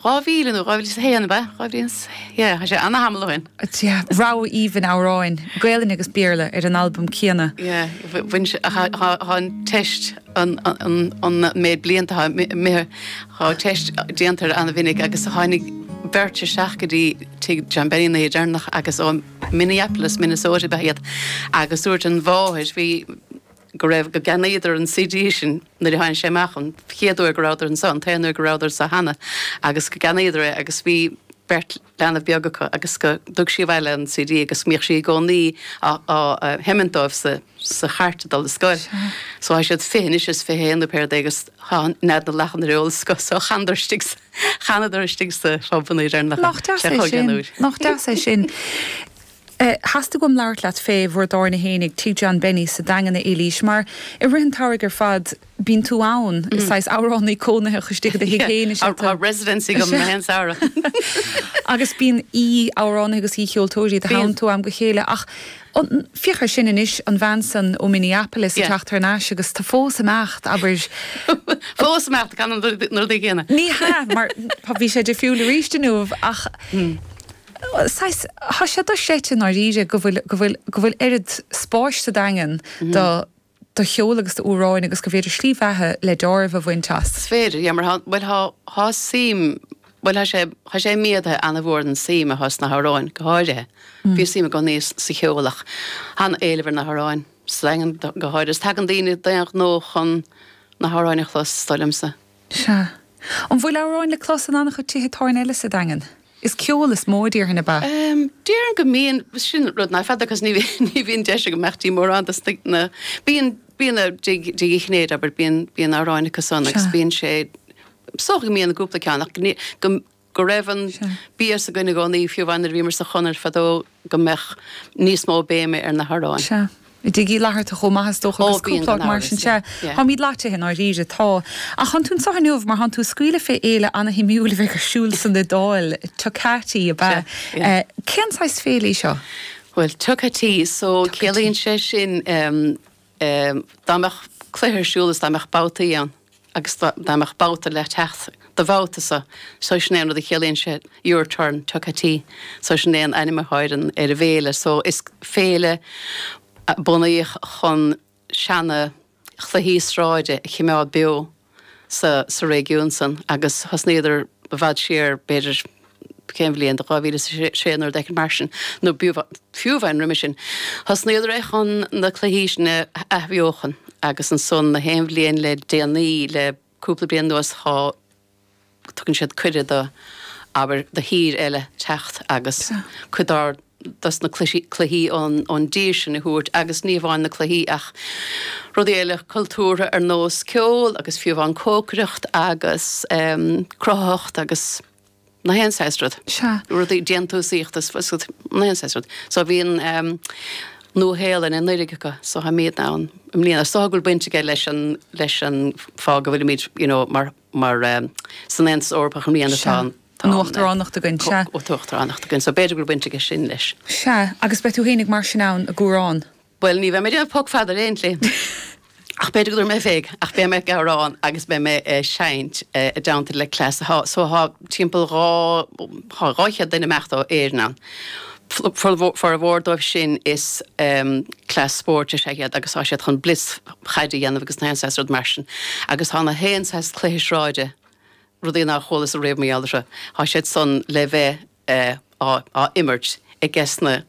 Dhá mhíle nó dhá mhíle is a haon, ab ea? Dhá mhíle is, yeah, tá sé ana-thamall ó shin. Yeah, rogha aoibhinn amhráin, Gaelainne agus Béarla, ar an albam céanna. Yeah, bhain sé, tá an teist, an méid blianta atá imithe, tá teist déanta air ana-mhinic agus tháinig beirt isteach go dtí tigh John Benny an oíche deireanach agus ó Minneapolis, Minnesota ab ea iad agus dúirt an mháthair, bhí, go raibh, go gceannaíodar an CD sin nuair a tháin sé amach an chéad uair go rabhadar anso, an t-aon uair go rabhadar anso cheana agus go gceannaíodar é agus bhí beirt leanbh beag acu agus go dtug sí abhaile an CD agus mbíodh sí i gcónaí á sheimint dóibh sa chairt ag dul ar scoil. So tá siad fiche anois is fiche haon nó pé rud agus tá Nead na Lachan ar eolas acu so chanadar istigh sa, chanadar istigh sa phub an oíche deireanach, bhí sé chomh deas. Nach deas é sin. Theastaigh uaim labhairt leat fé bhur dtábhairne fhéin ag Tigh John Benny sa Daingean, a Eilís, mar i rith an tsamhraidh ar fad bíonn tú ann, is saghas amhránaí cónaitheach istigh i do thigh fhéin, is ea tú. Tá residency agam na haon samhradh. Agus bíonn aoi-amhránaithe agus aoi-cheoltóirí id theannta ó am go chéile ach féach ar sin anois, an bhean san ó Minneapolis ag teacht thar n-ais agus tá tú fós ag imeacht, abair. Fós ag imeacht, ag canadh na rudaí céanna. Ní hea, mar bhí sé difriúil roimis inniu ach. saghas, thá sé do-chreidte i ndáiríre go bhfuil, go bhfuil, go bhfuil oiread spáis sa Daingean do, do cheol agus d'amhráin agus gur féidir slí bheatha le dealramh a bhaint as. 'S féidir, yeah, mar thá, bhuel thá, thá suim, bhuel thá sé, thá sé méadaithe ana-mhór an suim athá sna hamhráin go háirithe. Bhí suim i gcónaí sa cheol ach thá an-éileamh ar na hamhráin sa Daingean go háirithe. 'S tagann daoine d'aon ghnó chun na hamhráin a chlos, is dóigh liomsa. Sea. An bhfuil amhráin le clos in an-chuid tithe tábhairne eile sa Daingean? Is ceol is mó a déarfainn ab ea? Déarfainn go mbíonn. Sin rud ná feadar 'cause ní bhíonn deis agam imeacht go dtí mórán dos na, bíonn, bíonn i dTigh Uí Chinnéide abair, bíonn, bíonn amhráin acu san agus bíonn sé, is dócha go mbíonn cúpla ceann ach go, go raibh an bias againn i gcónaí, fiú amháin nuair a bhíomar sa Chonair fadó, go mbeadh níos mó béime ar na hamhráin. Sea. I dTigh Uí Fhlatharta chomh maith is dócha agus cúpla áit mar sin. Ó, gan amhras, yeah. Táimíd loitithe i ndáiríre. Tá. Ach thán tú anseo inniu mar thán tú ag scaoileadh féd fhéile ana-shuimiúil a bheidh ar siúl san Iodáil. Tocati ab ea? Sea. Yeah. Cén saghas féile í seo? Bhuel, Tocati, so ciallaíonn sé sin ehm. é. Dá mbeadh cluiche ar siúl is dá mbeadh babhtaí ann agus dá mbeadh babhta le teacht do bhabhta so, so sin é an rud a chiallaíonn sé your turn, Tocati. So sin é an ainm a thánn ar an bhféile. So is féile a bunaíodh chun seana chluichí sráide a chimeád beo. sa réigiún san agus thosnaíodar i bhfad siar, b'fhéidir, cén bhliain, 2006 nó rud éicint mar sin, nó fiú amháin roimis sin, thosnaíodar é chun na cluichí sin a athbheochan agus ansan na haon bhliain le déanaí, le cúpla bliain anuas, tá. tugann siad cuireadh do, abair, do thír eile teacht agus cuid dár, dos na cluichí, cluichí ón, ón dtír sin a thabhairt agus ní hamháin na cluichí ach rudaí eile cultúrtha ar nós ceol agus fiú amháin cócaireacht agus ehm cruthaitheacht agus na haon saghas rud, rudaí déantúsaíochta is na haon saghas rud. So bhí an ehm Nua Shéalainn anuraidh acu so táimidne ann i mbliana so thá go bhfuil baint aige leis an, leis an fáth go bhfuilimíd you know mar, mar san Aontas Eorpach an rian atá Sea. ann, tá an. Uachtaránacht againn, sea. Uachtaránacht againn so b'fhéidir go raibh baint aige sin leis. Sea, agus beidh tú féinig mar sin ann ag amhrán. Bhuel, ní bheidh mé ag déanamh poc fada ar aon tslí. Ach b'fhéidir go raibh mé ag, ach beidh mé ag amhrán agus beidh mé ag seinnt i dteannta le cleas so tá, timpeall dhá, tá dhá chéad duine amach ó Éirinn ann. Formhór dóibh sin is cleas spóirt is ea iad agus tá siad chun blitz chaide a dhéanamh agus na haon saghas rud mar sin. Agus tá na haon saghas cluiche sráide, rudaí nár chualasa riamh mar gheall orthu, tá siad san le bheith á imirt aiges na.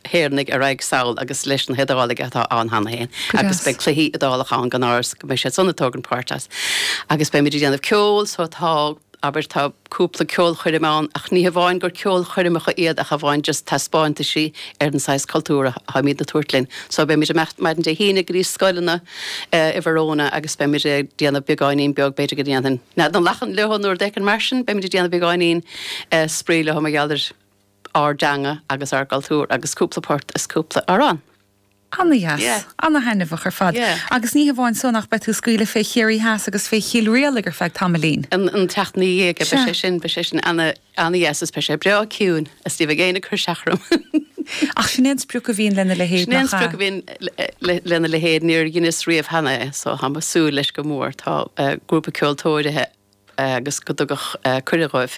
hÉireannaigh a raghaidh sall agus leis na hIodálaigh atá ann cheana féin. Go deas. Agus beidh cluichí Iodálach ann gan amhras, go mbeidh siad san ag tógaint páirt as. Agus beimid ag déanamh ceoil so tá, abair, tá cúpla ceolchoirm ann ach ní hamháin gur ceolchoirmeacha iad ach amháin just taispeáintaisí ar an saghas cultúr a táimid ag tabhairt linn. So beimid amach maidin Dé hAoine go dtí scoileanna i Verona agus beimid ag déanamh beagáinín beag, b'fhéidir go ndéanfainn nead na lachan leo nó rud éigin mar sin, beimid ag déanamh beagáinín spraoi leo mar gheall ar. ár dteanga agus ár gcultúr agus cúpla port is cúpla amhrán. Ana dheas. Ana thaitneamhach ar fad. Agus ní hamháin san ach beidh tú ag scaoileadh fé Chiarraí Theas agus fé Chill Rialaig ar feadh tamaillín. An tseachtain ina dhiaidh beidh sé sin, beidh sé sin ana dheas is beidh sé breá ciúin is ní bheidh éinne ag cur isteach orm. Ach sin é an sprioc a bhíonn lena leithéid, nach ea? Sin é an sprioc a bhíonn lena leithéid. Níor dheineas riamh cheana é so táim ag súil leis go mór. Tá grúpa ceoltóirithe agus go dtugadh cuireadh dhóibh.